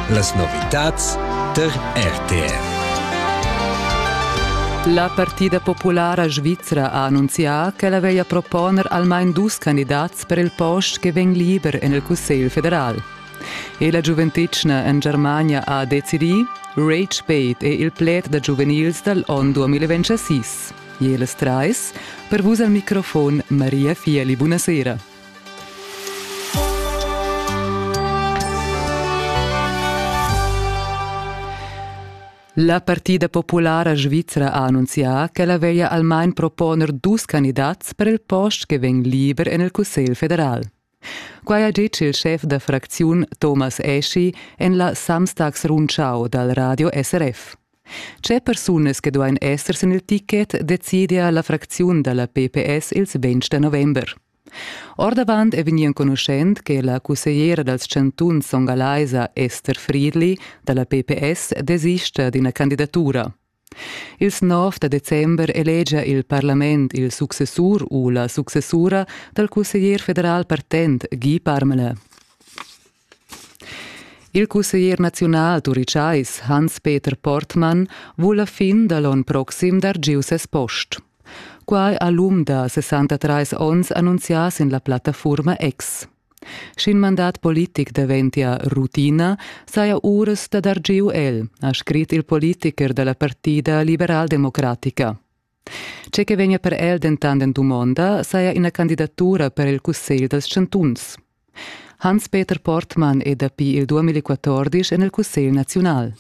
Las novitads tar RTR. La partida populara svizra ha annunzià ch'ella veglia proponer almain dus candidats per il post che vegn liber en il Cussegl federal. E la giuventetgna en Germania ha decidì, Rage Bait è il pled da giuvenils dal onn 2026. Jeles Treis, per vus al microfon Maria Fieli, buonasera. La partida populara svizra ha annunzià ch'ella veglia almain proponer dus candidats per il post che vegn liber en il Cussegl federal. Quai ha ditg il schef da fracziun Thomas Eschi en la Samstagsrundschau dal radio SRF. Tge persunas che duain esser sin il ticket decidia la fracziun da la PPS ils 20 da november. Ordavant è vegnì enconuschent che la cussegliera dals chantuns songalaisa Esther Friedli da la PPS desista d'ina candidatura. Ils 9 da december elegia il parlament il successur u la successura dal cusseglier federal partent Guy Parmelin. Il cusseglier naziunal turitschais Hans-Peter Portmann vul la fin da l'onn proxim dar giu ses post. Quai ha l'um da 63 onns annunzià sin la plattafurma X. Sch'in mandat politic daventia rutina, saja uras da dar giu el, ha scrit il politicher da la partida liberaldemocratica. Tge che vegnia per el dentant en dumonda saja ina candidatura per il Cussegl dals chantuns. Hans-Peter Portmann è dapi il 2014 en il Cussegl naziunal.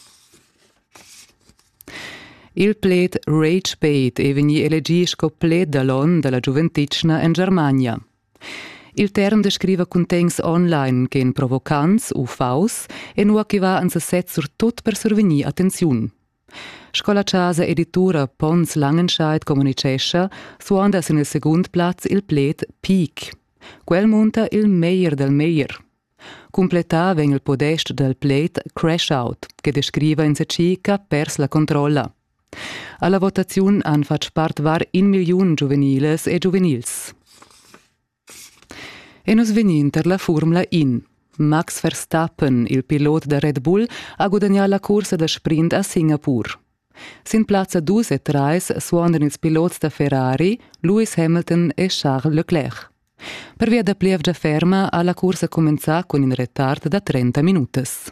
Il pled Rage Bait è vegnì elegì sco pled da l'onn da la giuventitschna en Germania. Il term descriva cuntegns online ch'en provocants u faus e nua che va en sesez surtut per survegnir attenziun. Sco la chasa editura Pons Langenscheit communitgescha, suonda sin il segund plaz il pled peak. Quel munta il meglier del meglier. Cumplettà vegn il podest dal pled crash out, che descriva in seci ch'ha pers la controlla. Alla votaziun han fatg part var in milliun giuveniles e giuvenils. E nus vegnin tar la furmla in. Max Verstappen, il pilot da Red Bull, ha gudagnà la cursa da sprint a Singapur. Sin plazza 2 e 3 suondan ils pilots da Ferrari, Lewis Hamilton e Charles Leclerc. Pervia da plievgia ferma ha la cursa cumenzà cun in retard da 30 minutas.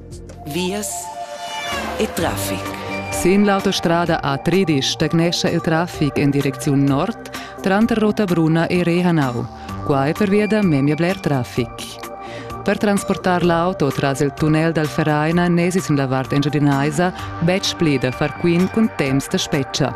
Vias e traffic. Sin l'autostrada A13 stagnescha il traffic en direcziun nord tranter Rotabrunna e Rehanau. Qua è pervia da memia bler traffic. Per transportar l'auto tras il tunnel dal Vereina n'èsi sin la vart engiadinaisa betg pli da far quint cun temps da spetga.